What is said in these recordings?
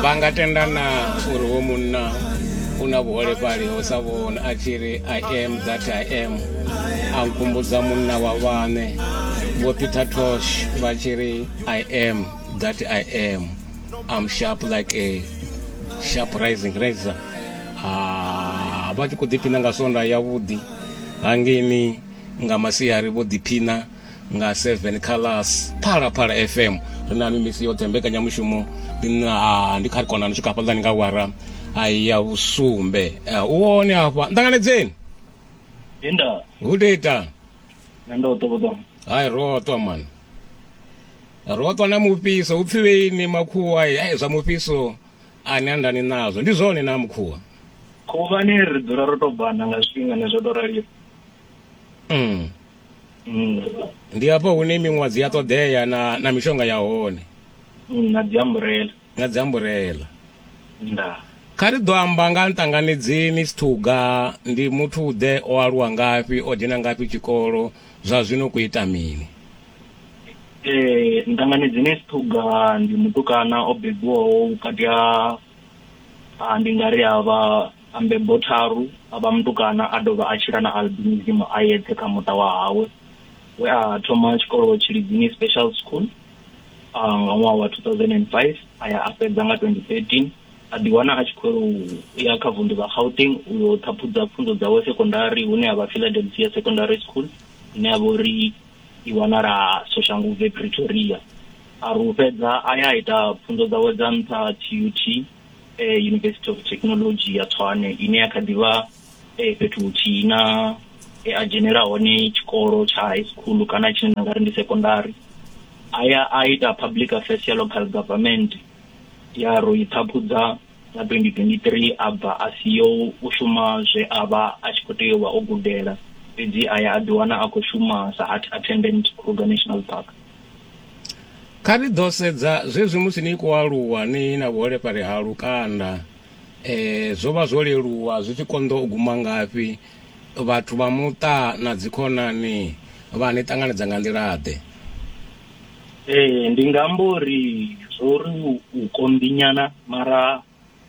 vha nga tendana uri wo munna u na vhuholefhali ho sa vhona a tshi ri i am that i am a nkumbudza munna wa vhaṋe vho peter tosh vha tshi ri i am that i am am sharp like a sharp rising razor ah, vha tshi khou ḓiphina nga sonda yavhuḓi hangeni nga masiari vho ḓiphina nga 7 kha las phalaphala fm ri na mimisi yoṱhe mbekanyamushumo ndi kha ri kona ni swika hafhaḽani nga wara ya vhusumbe u wone hafha nṱanganedzeni inda hu deta hai roṱwa mani roṱwa na mufhiso hu pfi veini makhuwa ai zwa mufhiso ani andani nazwo ndi zwone na mukhuwa khuvhani ri dzula ro to bana nga zwifhingani zwo to raliwa mm. mm. ndi hafho hune miṅwadzi ya ṱoḓea na na mishonga ya hone mm, na dziamburela na dziamburela nda kha ri ḓo amba nga nṱanganedzeni sithuga ndi muthu ḓe o aluwa ngafhi o dzhena ngafhi tshikolo zwa zwino ku ita mini eh nṱanganedzeni sithuga ndi mutukana o bebiwaho vhukati ha ndi nga ri avha A mbebo tharu, a vha mutukana a dovha a tshila na albinism a yeṱhe kha muṱa wa hawe, we a thoma tshikolo Tshilidzini Special School nga ṅwaha wa 2005 a ya a fhedza nga 2013, a ḓiwana a tshi khou yela u ya kha vunḓu ḽa Gauteng u yo ṱhaphudza pfunzo dzawe sekondari hune ha vha Philadelphia Secondary School ine ya vha uri i wanala Soshanguvhe, Pretoria. A ri u fhedza a ya a ita pfunzo dzawe dza nṱha TUT. eh, university of technology ya tshwane ine ya kha ḓivha eh, fhethu huthihi na eh, a dzhenela hone tshikolo tsha high school kana tshine nda nga ri ndi secondary a ya a ita public affairs ya local government ya ro i ṱhaphudza nga 2023 a bva a siyo u shuma zwe a vha a tshi khou tea u vha o gudela fhedzi a ya a ḓiwana a khou shuma sa art attendant kruger national park Kha ri ḓo sedza zwezwi musi ni khou aluwa ni na vhuholefhali ha lukanda zwo vha zwo leluwa zwi tshi konḓa u guma ngafhi, vhathu vha muṱa na dzikhonani vha ni ṱanganedza nga nḓila-ḓe? Ee, ndi nga amba uri zwo ri u konḓi nyana mara.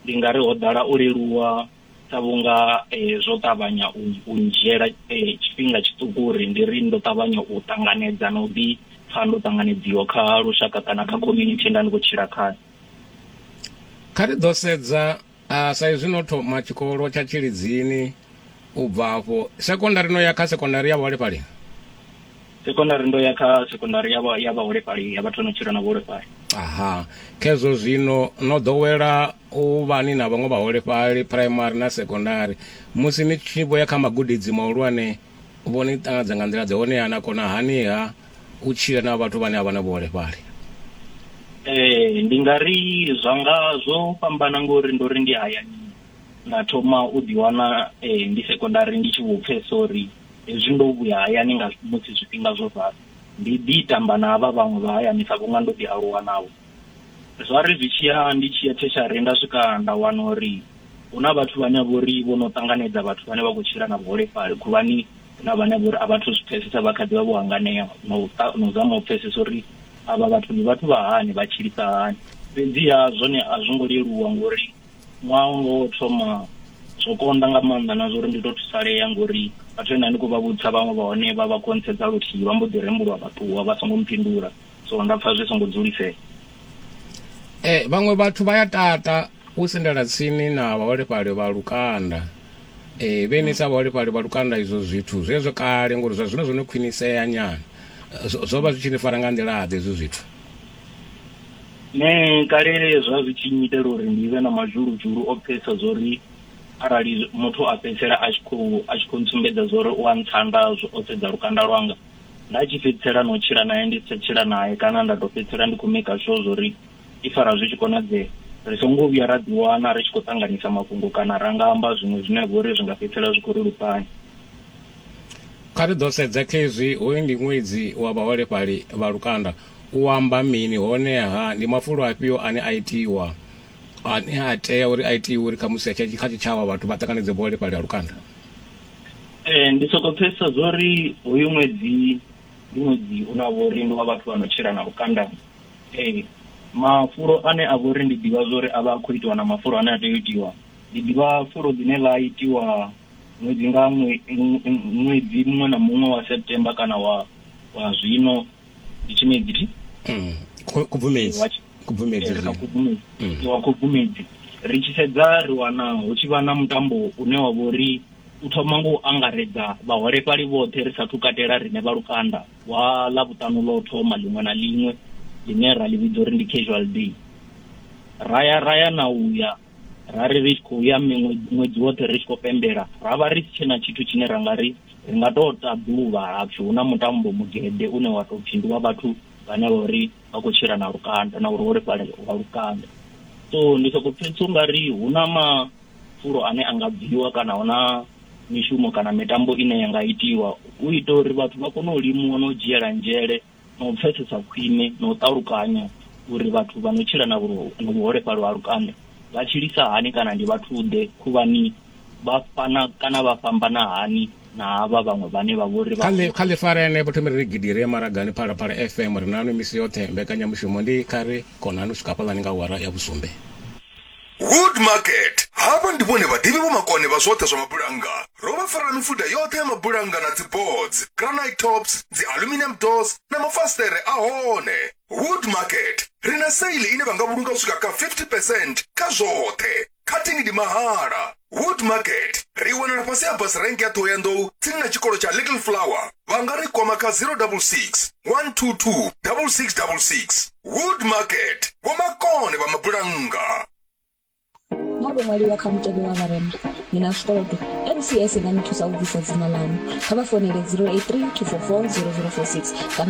ndi nga ri ho ḓala u leluwa sa vhunga eh, zwo ṱavhanya u u ndzhiela eh, tshifhinga tshiṱuku uri ndi ri ndo ṱavhanya u ṱanganedza na u ḓi pfha ndo ṱanganedziwa kha lushaka kana kha community nda ndi khou tshila khayo kha ri ḓo sedza ah, sa izwi no thoma tshikolo tsha tshilidzini U bva afho, sekondari no ya kha sekondari ya vhaholefhali? Sekondari ndo ya kha sekondari ya vha- ya vhaholefhali ya vhathu vha no tshila na vhuholefhali. Aha. Khezwo zwino no ḓowela u vha ni na vhaṅwe vhaholefhali phuraimari na sekondari. Musi ni tshi vho ya kha magudedzi mahulwane, vho ni ṱanganedza nga nḓila-ḓe honeha na kona haniha u tshila na vhathu vhane a vha na vhuholefhali? Ee, ndi nga ri zwa nga zwo fhambana ngori ndo ri ndi hayani. nda thoma u ḓiwana eh, ndi sekondari ndi tshi vho pfhesa uri hezwi ndo vhuya hayani nga musi zwifhinga zwo ralo ndi ḓi tamba na havha vhaṅwe vha hayani sa vhunga ndo ḓi aluwa navho zwa ri zwi tshi ya ndi tshi ya theshari nda swika nda wana uri hu na vhathu vhane vho ri vho no ṱanganedza vhathu vhane vha khou tshila na vhuholefhali khuvhani na vhane vho ri a vhathu zwi pfhesesa vha kha ḓi vha vho hanganea na u zama u pfhesesa uri avha vhathu ndi vhathu vha hani vha tshilisa hani fhedziha zwone a zwo ngo leluwa ngori ṅwaha wanga wo thoma zwo konḓa nga maanḓa na zwori ndi to thusalea ngori vhathu vhe nda ndi khou vha vhudza vhaṅwe vha hone vha vha khonthedza luthihi vha mbo ḓi rembuluwa vha ṱuwa vha songo mphindula so nda pfha zwi songo dzulisea eh vhaṅwe vhathu vha ya tata u sendela tsini na vhaholefhali vha lukanda eh vhe ni sa vhaholefhali vha lukanda izwo zwithu zwezwo kale ngori zwa zwino zwo no khwinisea nyana zwo vha zwi tshi ni fara nga nḓila ḓe izwo zwithu Nṋe kale zwa zwi tshi nnyitela uri ndi vhe na mazhuludzhulu o pfesa zwori arali muthu a fhedzisela a tshi khou a tshi khou ntsumbedza zwori u a ntsanda o sedza lukanda lwanga nda tshi fhedzisela na u tshila naye ndi si tsha tshila naye kana nda tou fhedzisela ndi khou maker sure zwori i fara zwi tshi konadzea ri songo vhuya ra ḓiwana ri tshi khou ṱanganisa mafhungo kana ra nga amba zwiṅwe zwine vho ri zwi nga fhedzisela zwi khou ri lupanya Kha ri ḓo sedza khezwi hoyu ndi ṅwedzi wa vhaholefhali vha lukanda. U amba mini, hone-ha ndi mafulo afhio ane a itiwa, ane a tea uri a itiwe uri khamusi kha tshitshavha vhathu vha ṱanganedze vhuholefhali ha lukanda? Ee, ndi sokou pfesesa zwa uri hoyu ṅwedzi ndi ṅwedzi une wa vha uri ndi wa vhathu vha no tshila na lukanda. Ee, mafulo ane a vha uri ndi ḓivha zwa uri a vha a khou itiwa na mafulo ane a tea u itiwa, ndi ḓivha fulo ḽine ḽa itiwa ṅwedzi nga ṅwedzi muṅwe na muṅwe wa September kana wa zwino. ndi tshimedzi thi Mm. Ku- Kubvumedzi. Wa tshi- Kubvumedzi. ri kha zwi- khubvumedzi Mm. wa khubvumedzi ri tshi sedza ri wana hu tshi vha na mutambo une wa vha uri u thoma ngo u angaredza vhaholefhali vhoṱhe ri sathu katela rine vha lukanda wa ḽa vhuṱanu ḽo thoma ḽiṅwe na ḽiṅwe ḽine ra ḽi vhidza uri ndi casual day raya raya na uya ra ri ri tshi khou ya miṅwe ṅwedzi woṱhe ri tshi khou pembela ra vha ri si tshena tshithu tshine ra nga ri ri nga tou ta ḓuvha hapfi hu na mutambo mugede une wa tou pfhi ndi wa vhathu vhane vha uri vha khou tshila na lukanda na vhuholefhali ha lukanda so ndi soko pfhesesa u nga ri hu na mafulo ane a nga bviwa kana hu na mishumo kana mitambo ine ya nga itiwa u ita uri vhathu vha kone u limuwa na u dzhiela nzhele na u pfesesa khwine na u ṱalukanya uri vhathu vha no tshila na vhuholefhali ha lukanda vha tshilisa hani kana ndi vhathu-ḓe khuvhani vha fana kana vha fhambana hani na havha vhaṅwe vhane vha vhori vha kha ḽi fara ene vho thomela ri gidi ri maragani phalaphala fm ri nanu misi yoṱhe mbekanyamushumo ndi kha ri konani u swika hafhaḽani nga awara ya vhusumbe Wood Market. Havha ndi vhone vhaḓivhi vho makone vha zwoṱhe zwa mabulannga. Ro vha farela mifuda yoṱhe ya mabulannga na dziboards, granite tops, dzi aluminium doors na mafasiṱere a hone. Wood Market. Ri na sale ine vha nga vhulunga u swika kha 50 percent kha zwoṱhe. Cutting ndi mahala. wood market ri wanala fhasi ha bus rank ya ṱhohoyanḓou tsini na tshikolo tsha little flower vha nga ri kwama kha 066 122 6666 wood market vhomakone vha mabulannga nga vho ṅwaliwa kha mutevhe wa vharema ni na zwikolodo mcs i nga ni thusa u bvisa dzina ḽaṋu kha vha fonele 083 244 0046 kana